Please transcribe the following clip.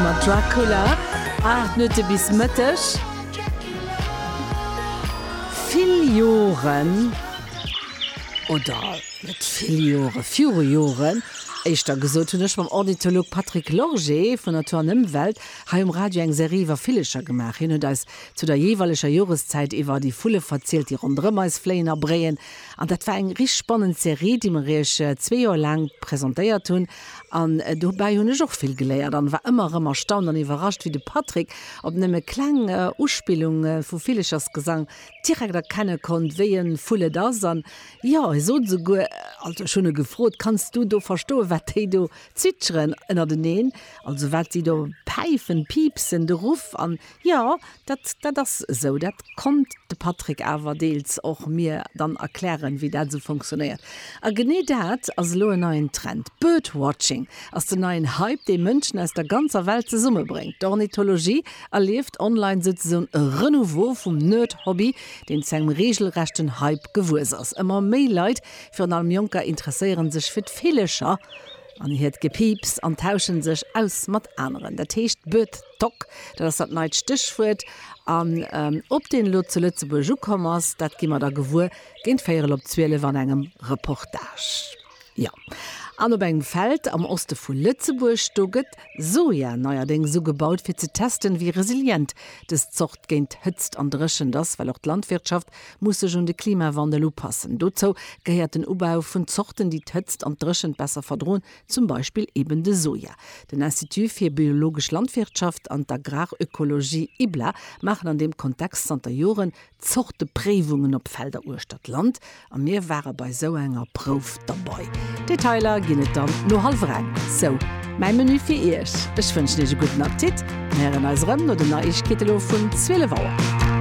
Mat Dracula, 8 Minutte bis Mëtteg. Vill Joren, oder net vill Jore viru Joren, éischter gesot, hunn ech mam Ornitholog Patrick Lorgé vun Natur an Ëmwelt hei um Radio eng Serie iwwer Villecher gemaach. Hien huet eis zu der jeeweileger Joreszäit iwwer déi Vulle verzielt, déi ronderëm eis fléien a bréien. An dat war eng richteg spannend Serie, déi mer Iech zwee Joer laang presentéiert hunn. An dobäi hunn ech och vill geléiert an war ëmmer erëm erstaunt an iwwerrascht, wéi de Patrick op nëmme kleng Uspillunge vu Villechersgesang direkt erkenne konnt, wéi e Vull et ass. An jo, e sot esouguer, also ech hunn e gefrot, Kanns du do verstoen, wat déi do zwitscheren ënnerteneen, also wat si do päifen, piipsen, de Ruff? An Jo, dat, dat ass esou. Dat konnt de Patrick awer deels och mir dann erklären, wéi dat esou funktionéiert. A genee dat ass elo en neien Trend. Birdwatching ass den neien Hype, dee Mënschen aus der ganzer Welt zesummebréngt. D'Ornithologie erlieft online souzesoen e Renouveau vum Nerd-Hobby, deen zu engem reegelrechten Hype gewuess ass. Ëmmer méi Leit, virun allem Jonker, interesséiere sech fir d'Villecher. An hiert Gepiips an tauschen sech aus mat aneren. Dat heescht Bird Dog, dat ass dat neit Stéchwuert. An ob deen elo zu Lëtzebuerg ukomm ass, dat gi mer da gewuer géint véierel op zwielef an engem Reportage. Jo, an op engem Feld am Oste vu Lëtzebuerg, do gëtt Soja neierdéngs ugebaut, fir ze testen, wéi resilient dës Zort géint Hëtzt an Dréchent ass, well och d'Landwirtschaft muss sech un de Klimawandel upassen. Dozou gehéiert den Ubau vun Zorten, déi d'Hëtzt an d'Dréchent besser verdroen, zum Beispill eben de Soja. Den Institut fir biologesch Landwirtschaft an d'Agrarökologie, IBLA, maachen an deem Kontext zanter Joren Zortepréiwungen op Felder uechter d'Land a mir ware bei esou enger Prouf derbei. Detailer ginn et dann no hallwer eng. Sou mäi Menü fir Iech. Ech wënschen Iech e gudden Appetit. Mir héieren eis erëm no den Neiegkeete lo vun 12 Auer.